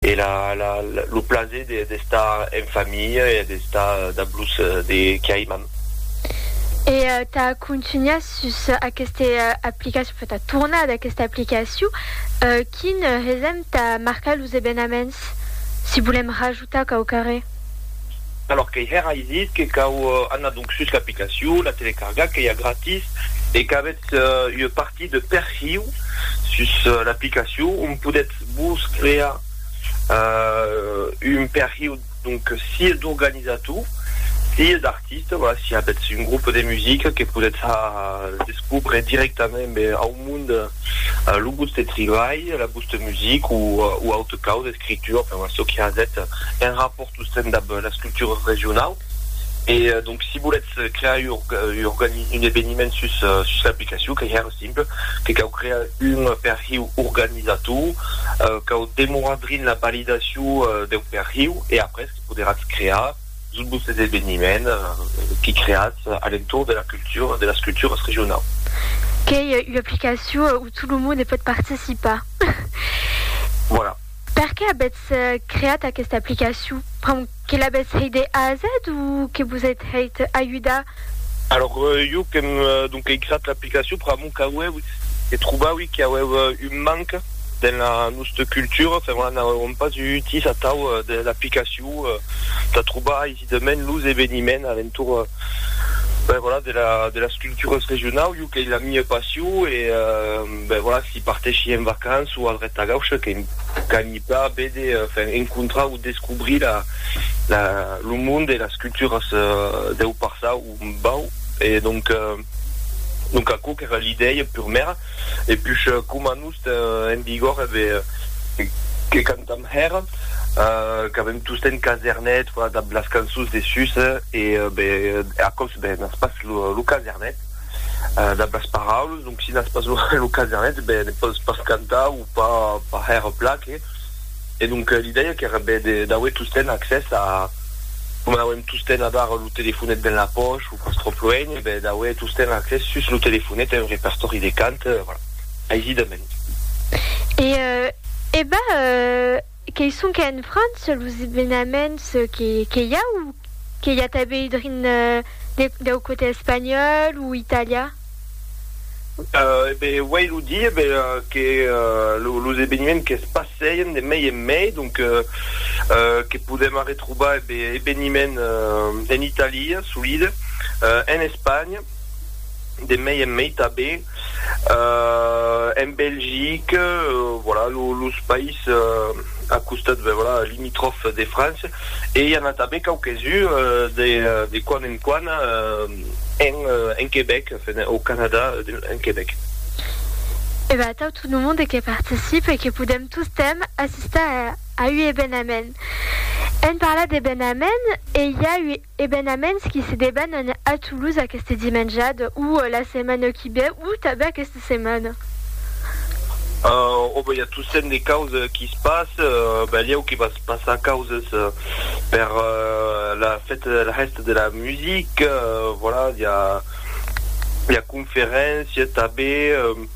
E la la lo plaser de d'estar en familha e d'estar dab los de qui aimam. E tà contunhar sus aqueste aplicacion, enfin tà tornar d'aquesta aplicacion, quin hesèm tà marcar los ebenaments si volèm rajoutar quauquarre? Alòrs qu'ei hèra ei dit que cau anar donc sus l'aplicacion, la telecargar qu'ei a gratis e qu'avètz ua partie de perhiu sus l'aplicacion on podètz Vos crear un perhiu donc sieu d'organizator, sieu d'artiste, voilà, si avètz un grup de musica que podètz descobre directament ben au mond lo vòste tribalh, la vòste music o o autre causa, escritura, enfin voilà çò que avètz en rapòrt tostemps dab las cultures regionaus. E donc si volètz crear un organi un eveniment sus sus l'aplicacion qu'ei hèr. simple, que cau crear un perhiu organizator, cau demorar drin la validacion deu perhiu e après que poderatz crear tot vos eveniment que creatz a l'entorn de la cultura, de las culturas regionau. Qu'ei ua aplicacion où tout le monde pòt participar. Voilà. Perqué avètz creat aquesta aplicacion? Pr'amor que l'avètz hèit de A a Z o que vos ètz hèit ajudar? Alòr, jo qu'èm donc creat l'aplicacion pr'amor qu'auè ui, que trobaui qu'i auèu un manc dens la nosta cultura, fèr una n'auèuem pas utís atau de l'aplicacion tà trobar aisidament los eveniments a l'entorn, ben voilà, de las culturas regionau, jo qu'ei la mia passion e. Ben voilà, si parteshi en vacances o al Retagauche, que qu'anhi pla vede, enfin encontrar o descobrir la la lo monde e las culturas deu passau o bau e donc donc aquò qu'èra l'idèia purmèra e push coma nos ten en vigor e be que cantam hèra qu'avem tostemps casernet, voilà dab las cançons de sus e be aquò's be n'as pas lo casernet. dab las paraules, donc si n'as pas lo casenet ben ne pòs pas cantar o pas hèr plan que e donc l'idèia qu'èra ben d'auer tostemp accès a coma n'auem tostemp avar lo telefonet dens la pòch o pas tròp luenh e ben d'auer tostemp accès sus lo telefonet a un repertòri de cant, voilà, aisidament. E ben Qué sonque en França los evenaments que i a o que i a tanben drin dau cote espanhòl o italian? E ben, uèi lo dire, ben, que los eveniments que's passèien de mei en mei, donc que podèm arretrobar, e ben, eveniments en Italia, solide, en Espanha, de mei en mei tanben, En Belgique, voilà, los païses a costat, ben voilà, limitròfs de França, e i a n'a tanben quauques uns de quan en quan en Quebec, enfin, au Canada, en Quebec. E ben atau tot lo monde que participe e que podèm tostemp assistar a ua evenament. Èm parlat d'evenament e i a ua. Ebenaments qui se debanan a Toulouse aqueste dimenjad o la setmana qui ve o tanben aqueste setmana. O ben i a tossent de causes qui se passe, belieu que va se passar causes per la fête de la hèsta de la musique, voilà, i a conferéncia tanben.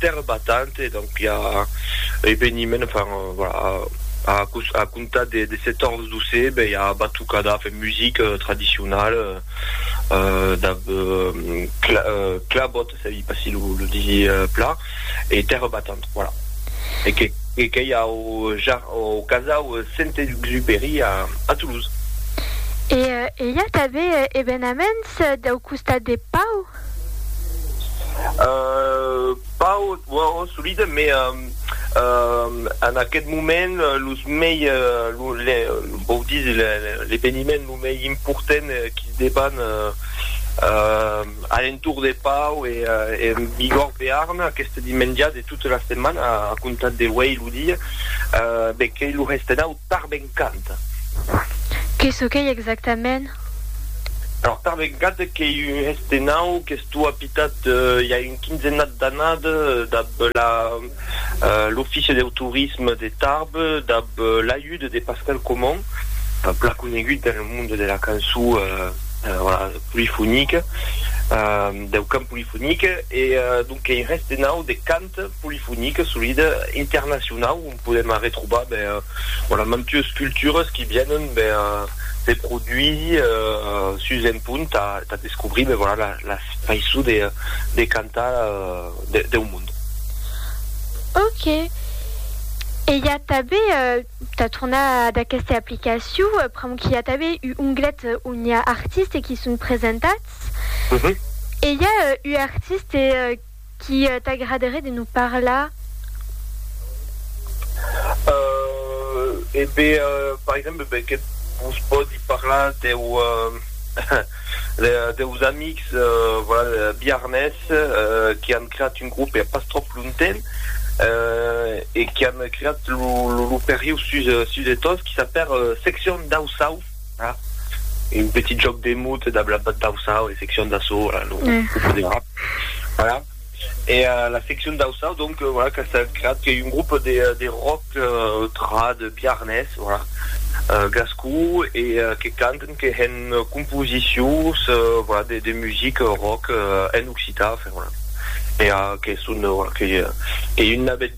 Terre Battante, donc i a eveniment, enfin, voilà, a, a comptar de, de 14 12, ben i a batucada, enfin, musique traditionnelle, euh, da, euh, cla, euh, clabot, ça dit pas si le, le dit euh, plat, et Terre Battante, voilà. Et que, et que i a au, jar, au casau Saint-Exupéry a, a Toulouse. E, e i a tanben evenaments dau costat de Pau? Pas au solide, mais en aquest moment los mei, vòu dire l'eveniment lo mei important qui se deban a l'entorn de Pau e en Bigòrd Bearn aqueste dimenja de tota la setmana a comptar d'auei lo dia, ben qu'ei lo Restenau. Tarbencant. Que çò qu'ei exactament? Alors, Tarbencant qu'ei un hestenau qu'estó apitat i a un quinzenat d'anat dab la l'Offici deu Torisme de Tarbes dab l'ajut de Pascal Comon, plan conegut dans le monde de la cançó polifonique, deu cant polifonique e donc qu'ei un hestenau de cant polifonique solida internacionau. podèm arretrobar ben, voilà, mantues cultures qui vienen ben, de produits sus un punt tà tà descobrir ben, voilà, la faiçon de de cantar de deu mond. Ok. E i a tanben, tà tornar ad aquesta aplicacion, pr'amor qu'i a tanben u onglet on i a artistes qui son presentats. E i a u artiste Qu'i t'agraderé de nous parlar? Euh, e be, par exemple, be que vos pòdi parlar deu, deus amics, voilà, biarnés, qu'i an creat un grop pas tròp lonten, e qu'i an creat lo, lo, lo perriu sus, sus de tot, qu'i s'apèr Seccion dau Sauv. un petit jòc de mot e d'ablapat d'Auçao, en seccion d'Açò, voilà, lo poderà, voilà, e la seccion d'Auçao, donc, voilà, qu'a estat creat, qu'ei un grop de de rock trad biarnés, voilà, gascon, e que canten, que hèn composicions, voilà, de de music rock en occitan, enfin, voilà, e que son, voilà, qu'ei un navèth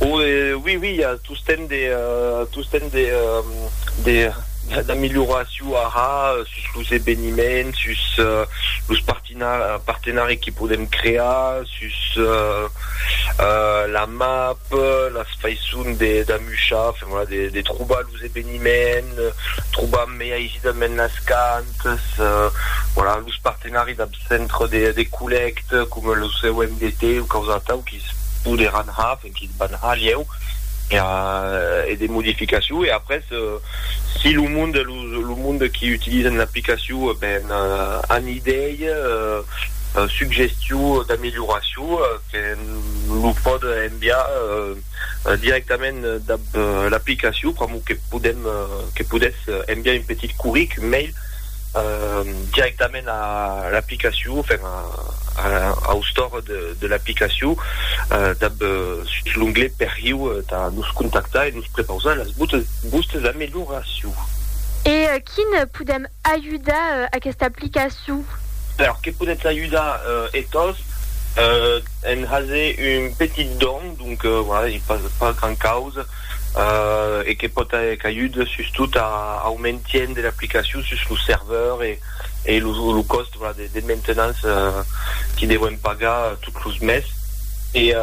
O e oui oui i a tostemp de tostemp de de d'amilhoraciu ara sus los eveniments sus los partina partenari que podem crear sus la map las faisson de d'amuchar enfin voilà de de trobar los los eveniments, trobam mei aisidat mens las cantas, voilà, los partenari dab centre de de collècte coma lo COMDT o quaus atau quis poderàn har, enfin quis van har lhèu per e de modificaciu e après si lo monde los lo monde qui utilizan l'aplicaciu ben an idei, suggestiu d'amelioraciu que lo pòde enviar. directament dab l'aplicacion, pr'amor que podem, que podètz enviar un petit curric, un mail, directament a l'aplicacion, enfin au store de l'aplicacion, dab sus l'onglet perriu tà nos contactar e nos prepausar las vostes amelioracions. E quin podem Ajudar aquesta aplicacion. Per que podètz ajudar e tos en haser un petit don, donc voilà, ei pas gran causa e que pòt qu'ajude sustot au maintien de l'aplicacion sus lo serveur e lo còst de maintenance que devèm pagar tot los mes e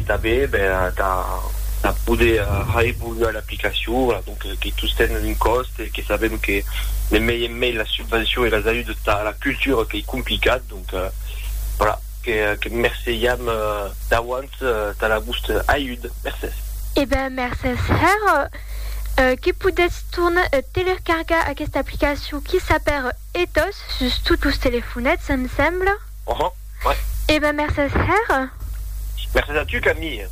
tanben tà poder reevoluar l'aplicacion. que tostemps un còst e que sabèm que de mei en mei las subvencions e las ajudes tà la cultura qu'ei complicat, donc voilà, que merceiam d'auants tà la vòsta ajud. Mercés. E ben, mercés hèr que podètz torn telercargar aquesta aplicacion qui s'apèr Ethos sus tots los telefonets, em sembla. Uhum, ouais. E ben, mercés hèr. Mercés a tu, Camille.